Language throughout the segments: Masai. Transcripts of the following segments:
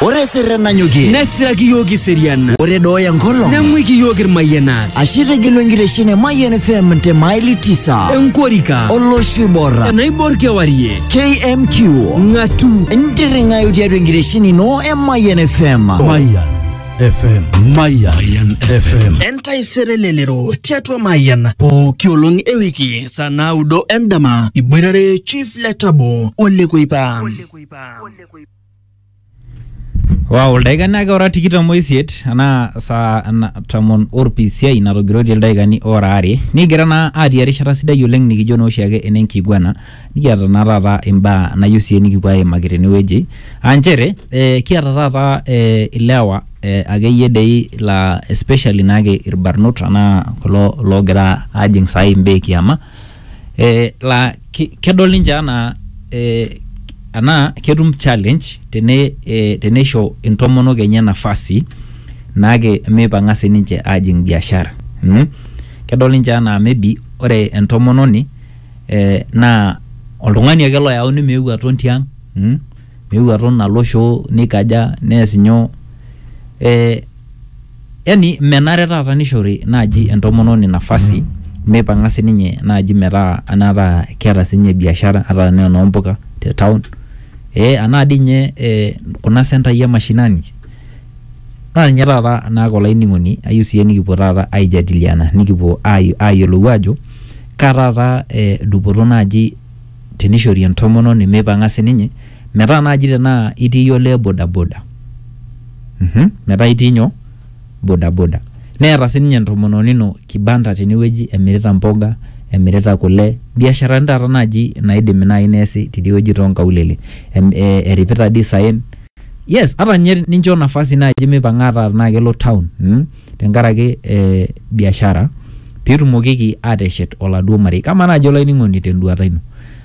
Ore sirre nanyokie nesiraki iyiook iserian ore dooya enkolong nemwiki iyiook irmayianat ashe tegelu enkitesheni e Mayian FM te maili tisa enkorika olosho oibor enaibor kewarie KMQ ng'atu intirring'ayu tiatua enkitesheni ino e Mayian FM. Mayian FM. Mayan, Mayan FM. entaisere lelero tiatua mayian pooki olong e wiki saa naudo endama iboitare chief letabo olekuipa Wow, ildaikani ake ora tikitam oisiet anaa saa ana- tomon orpisiai natogiroitie ildaikani ora are nigira naa atii erishata sidai oleng nikijo naa oshiake enenkiguana Nikiata naa taata imbaa nayieu sii nikipuo aimaki tenewueji aa nchere ee kiata taata ee ilewa ee akeyie dei laa especially naake irbarnot anaa kulo loogira aajing' saai imbaa e kiama ee laa ki kedol ninche anaa ee anaa ketum challenge tene ee teneisho intomonok enye nafasi naake meipang'a sininche aajing' biashara mmh. Kedol ninche anaa maybe ore entomononi. eh, naa oltung'ani ake loyauni meeu aton tiang mm? meeu aton alo shoo neikaja nees nyoo eh, yani menare taata nishori naaji entomononi nafasi meipang'a sininye naaji metaa anaata keeta sinye biashara ata tenaa enompuka te town eh, anaa dii inye eh, kuna sentai e mashinani naa ninye taata naake olainining'oni ayieu siyie nikipuo taata aijadiliana nikipuo ai- ayiolou ajo Kaa taata dupoto naaji teneishori entomononi meipang'a sii ninye metaa naaji tenaa itii iyie olee bodaboda, metaa itii nyoo, bodaboda neeta sii ninye entomononi ino kibanda tene wueji emirita mboga, emirita kule, mbiasharani taata naaji naaidim naaji neesi tidie wueji too nkaulele, eripita dii isaen, yes ata ninye nincho nafasi naaji meipang'a ata tenaa kelo town. tenkaraki eh, biashara pitumokiki ateshet oladuo marei kamaa naaji olainining'oni tenduata ino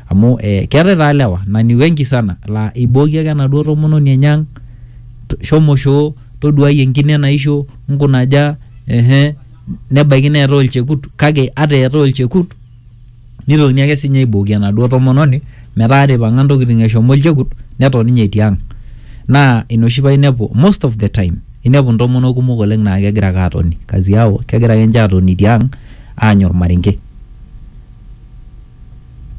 amu eh, keetae taa lewa na ni wengi sana laa eibooki ake enaduo tomononi enye ang "To- shomo shoo toduai enkine naisho nkunaja ehe nebaiki neetae olchekut kake ata eetae olchekut Neitokini ake sii ninye aibooki enaduo tomononi metaa ata eipang'a ntokitin eshomo olchekut neton ninye etii ang'. Naa ina oshi paa inepu most of the time inepu ntomonok kumok oleng' naa kegira ake atoni, kazi yao kegira ake ninche atoni tiang' aanya olmarenke.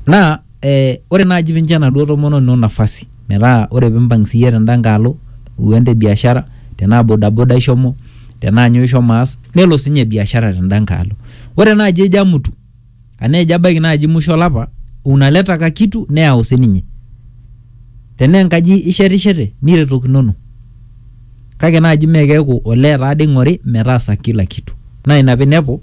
Naa Ee ore naaji pincho enaduo tomononi ino nafasi metaa ore pimpang siyie tenda nkae alo iwuo ende biashara tenaa bodaboda ishomo tenaa nyoo ishomo aas nelo sinye biashara tenda nkae alo ore naaji ejo amutu anaa ejo abaiki naaji musho olapa unaleta ka kitu neyau sininye tenaa enkaji ishetishete niretokinono kake naaji mee keeku olee taade ing'ori metaasa kila kitu naa ina pinepu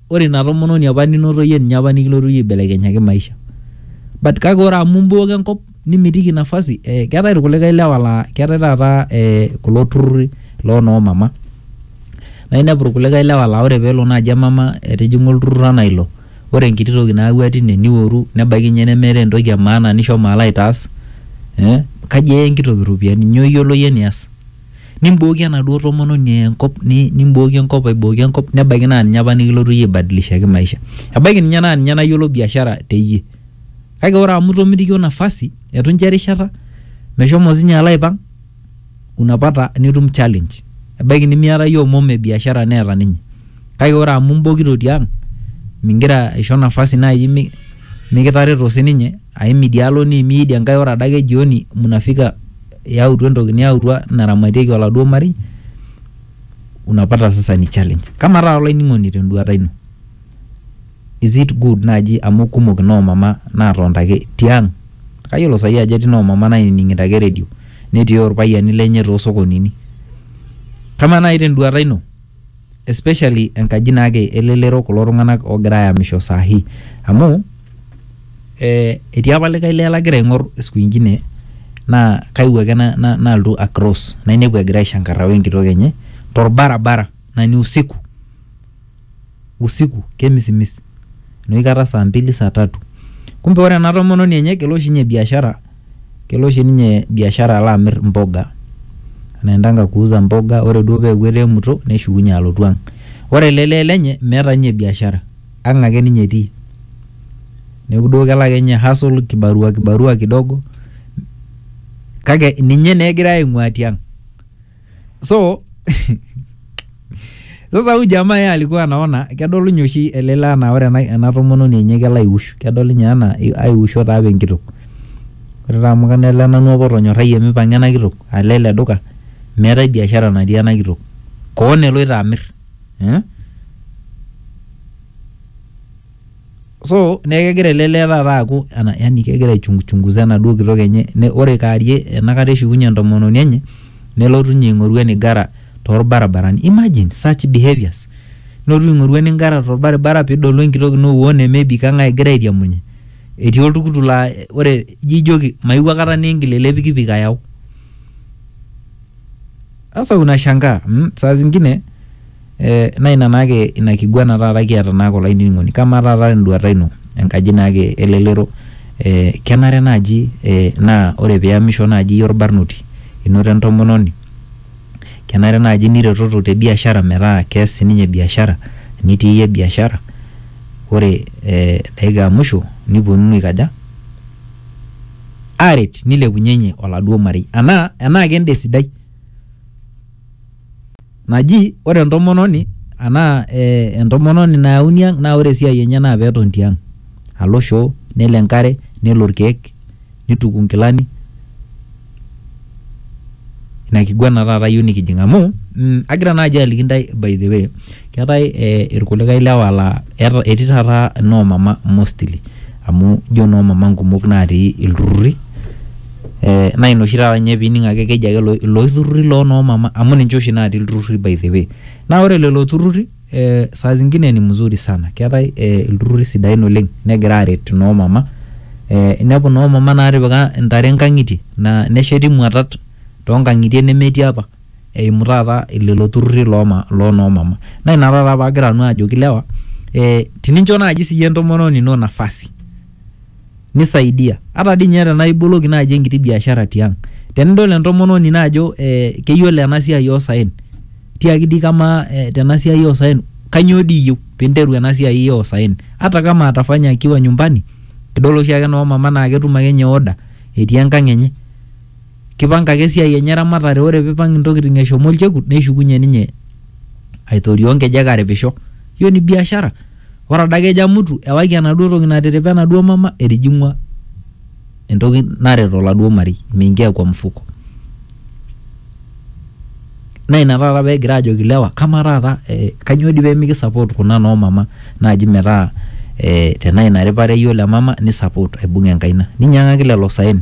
ore ina tomononi apa ninoto yie ninye apa nikilotu yie aibelekenyaki maisha but kake ore amu imbuoka enkop nimitiki nafasi eh, keetae irkulikae lewa laa keetae taata eh, kulo turruri loo noo mama naa inepu irkulikae lewa laa ore peelo naaji emama etijing'a olturrur anaa ilo ore enkiti toki nayawua tine niworu nebaiki ninye nemeeta entoki e maana nishomo alo aitaas eh, kaji eya enkitoki iropiyiani nyoo iyiolo yie nias. nimbooki enaduo tomononi eya enkop ni- nimbooki enkop aibooki enkop nebaiki naa ninye apa nikilotu iyie aibadilishaki maisha ebaiki ninye naa ninye nayiolo biashara teyie kake ore amu itomitikio nafasi etu incho erishata meshomo sinye alo aipang unapata nitum challenge ebaiki nimiata iyie omom e biashara neeta ninye kake ore amu imbokito tiang mingira aisho nafasi naaji mi- mikitareto sininye aim idialo niimie idia nkae ore adake jioni munafika Yautua entoki niyautua naramatieki oladuo marei unapata sasa ni challenge. Kama taa olainining'oni tenduata ino, is it good naaji amu kumok inoomama naatonta ake tiang', kayiolo saai ajo etii inoomama nainining'ito ake redio netii olpayiani lenye toosokonini. Kamaa nai tenduata ino? Especially enkaji naake elelero kulo tung'anak ogira ayamisho saa hii. Amu, eh etii apa likae lee lagira aing'or siku ingine ,naa kaewuo ake nalotu a cross nainepu egira aishankarra wenkitok enye torbarabara na ni usiku. Usiku kemisimis. Noshi kata saa mbili saa tatu. Kumbe ore ena tomononi enye kelo oshi nye biashara, Kelo oshi ninye biashara alo amir mboga, anaendanga kuuza mboga, ore duo peeku eteemuto neshukunye alotu ang'. Ore ele lee lenye meeta ninye biashara, ang' ake ninye etii. Neeku duo kelo ake ninye hustle kibarua kibarua kidogo kake ninye naa egirai aing'uaa tiang'. so sasa huyu jamaa yeye alikuwa anaona kedol ninye oshi ele lee anaa ore ena, ena tomononi enye kelo aiwush kedol ninye anaa i- aiwusho taa apa enkitok ore taa amu kana ele nanu apa otonyorrayie mipang'a ena kitok alo ele duka meetae biashara natii ena kitok koon eloito amirr eh? so neeku kegira ele lee taata aaku ana- yani kegira aichunguza enaduo kitok enye ne, ore kaarie enakata eshukunye entomononi enye nelotu ninye aing'oru enigara torbaribarani imagine such behaviours nilotu aing'oru enigara torbaribara pidolu enkitok ino woo nemebik ang egira airiamunye etii oltukutuk laa ore ijo ijoki maewuo akata niingil ele pikipik ayau sasa unashangaa mm, saa zingine Naa ina naake ina kiguana taata kiata naake olainining'oni. Kamaa taata tenduata ino enkaji naake elelero kenare naaji naa ore piyamisho naaji iyie orbarnoti inoto entomononi kenare naaji niretoto te biashara metaa kees sininye biashara nitii iyie biashara ore dakika e musho niponunu aikaja? aaret nilepunyenye oladuo marei enaa enaa kenda esidai naji ore entomononi anaa eh, entomononi nayauni ang naa ore esiai enye naa peton tiang alo shoo nelo enkare nelo irkeek nituku inkilani ina kiguana taata yieu nikijing amu mm, agira naaji aliki intae by the way keetae eh, irkulikae lewa laa eeta- etii taata inoomama mostly amu ijo noo mama nkumok natii ilturruri eh, naa ina oshi taata ninye pining ake keji ake ilo- iloshi turruri loo noo mama amu ninche oshi natii ilturruri by the way naa ore lelo turruri eh, saa zingine ni mzuri sana keetae eh, ilturruri sidain oleng negira aret noo mama eh, inepu noo mama natipika intare inkang'itie naa nesheti imuatat tonkang'itie nemetii apa. eimu taata lelo turrurri loo ma- loo noo mama naa ina taata paagira nanu ajoki lewa eh, tinincho naaji siyie entomononi ino nafasi nisaidia ata dii ninye tenaa iboloki naaji enkiti biashara tiang tenidol entomononi ino ajo eh, keyiolo ena siai oosaen tiaki dii kamaa eh, tena siai oosaen kanyoo dii iyieu pinteru ena siai oosaen hata kama atafanya akiwa nyumbani kidol oshiake noo mama naa ketum akenye order etii enkang enye. Kipanga ake esiai enye eramatare ore pipang intokiting eshomo olchekut neshukunye ninye aitorioo nkejek aripisho. Hiyo ni biashara. Ore adake ejo amutu ewaki enaduo toki natiripa enaduo mama etijing'ua entoki naret oladuo marei. Imeingia kwa mfuko. Naa ina taata pekigira aajoki ilewa kamaa taata kainyoo dii pemiki support kuna noo mama naaji metaa tenaa ina ripare iyiolo emama ni support aibung enkaina. Ninyang'aki lelo saen.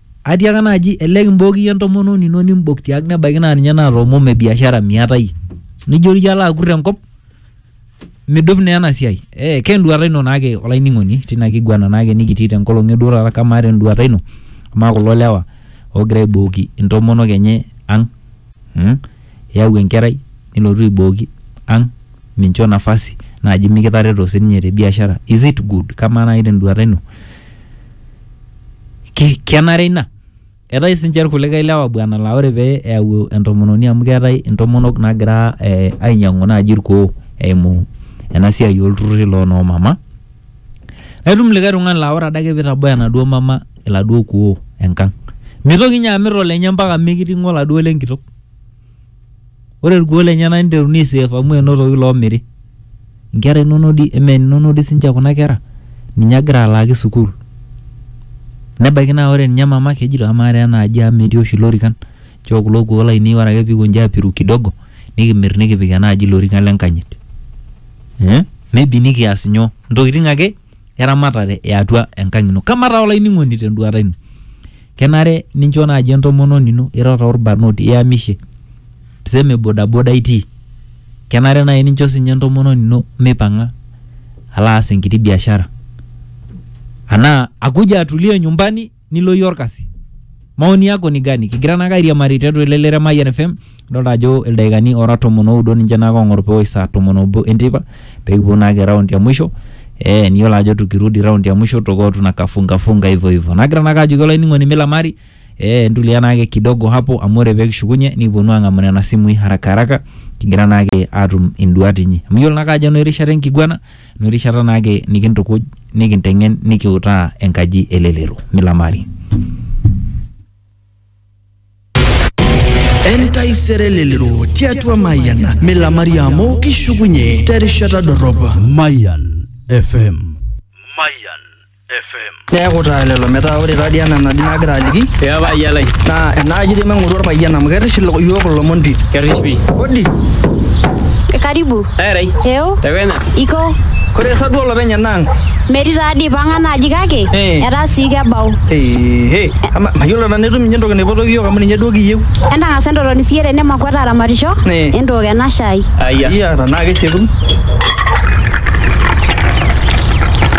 Atiaka naaji elelek imbook iyie entomononi ino nimbok tiang nebaiki naa ninye naata omom e biashara miata iyie nijo iyie alo akur enkop midup naa ena siai eh, ke enduata ino naake olainining'oni tina kiguana naake nikitii tenkolong eduo taata kamaa tenduata ino amaa kulo lewa ogira aibooki intomonok enye ang mm? iyau enkerai nilotu aibooki ang mincho nafasi naaji mikitareto sininye te biashara is it good kamaa naaji tenduata ino ki, kenare ina eetae sinche irkulikae lewa bwana laa ore pee eyau entomononi amu keetae intomonok naagira eh, ainyiang'u naaji irkuoo eimu ena siai olturruri loo noo mama naitum likae tung'ani laa ore adake pitabaya enaduo mama iladuo kuoo enkang mitoki inye amirr olenye mpaka mikiting'o oladuo lenkitok. ore irkuoo lenyena niteruni aiseef amu enotoki loomiri inkera inonok di eme inonok di sinche kuna kera ninye agira alaaki sukuul nebaiki naa ore ninye mama kejito amaa taa ena aji amu metii oshi ilorikan nchoo kulo kuoo lainei ore ake piikonji apiru kidogo nikimirr nikipik ena aji ilorikan lenkanyit eh maybe nikias inyoo intokiting ake eramatare e atua enkang ino. Kamaa taa olainining'oni tenduata ino, kenare nincho naaji entomononi ino ira taa orbarnoti iyamishe, tuseme bodaboda itii, kenare naaji nincho siininye entomononi ino meipang'a alo aas enkiti biashara anaa akuja atulie nyumbani. nilo iyie orkasi maoni yako ni gani kigira naake airiamari tiatua ele lere Mayian FM idolta ajo ildaikani ora tomon oudo ninche naake ong'or pewosh saa tomon obo enteipa pekipuo naake raundi ya mwisho eh, niyiolo ajo tukirudi raundi ya mwisho toko tunakafunga funga hivyo hivyo nagira naake ajoki olainining'oni milamari eh, ntulia naake kidogo hapo amu ore pekishukunye nikiponu ang'amu nena simui haraka haraka kigira naake atum induat inyi amu iyiolo naake ajo enoerishata enkiguana No rishata naake nikintukuj, nikinteng'en, nikiutaa enkaji e lelero. Milamari. Entaisere lelero tiatua Mayian milamari amu kishukunye terishata dorrop. Mayan FM. Mayan Neeku taa lelo metaa ore taa dii ena naji nagira aliki Ee paayia lai. naa enaaji dii maing'oru orpayian amu kerrish ilo- iyiook ilomon pii. Kerrish pii. Odi, Karibu. Erai. Eo, Tekenya. iko. kore sa duo olopeny ena ang'? Metii taa dii pang'a naaji kake Eh. etaa sii kebau. Ehe, ama mayiolo nanu etum ninye entoki naipotoki iyiook amu ninye duo kiyieu. Entang'asa entotoni siiyie tene makuat aramatisho. Eh. Entook ena shai. Ayia. Iya, tenaa kesieku.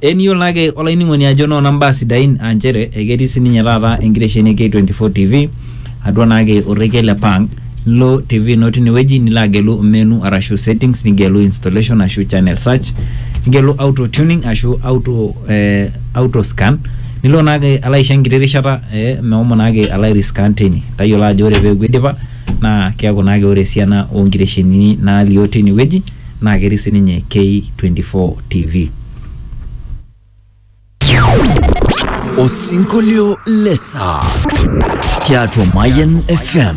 Eniyiolo ake olainining'oni ajo noona mbaa sidain aa nchere eketii sininye taata enkitesheni e K24 TV atua naake orrekie le Pang. Nilo TV ino tinewueji nilo agelu menu arashu settings nigelu installation ashu channel search nigelu auto tuning ashu auto eh auto scan nilo naake alo aisho enkiti rishata eh mehomo naake alo airiskan tine. Tayiolo ajo ore peeku eidipa naa keaku naake ore esiana oonkiteshenini naalio tinewueji naa ketii sininye K24 TV. Osinkolio le saa tiatua Mayian FM.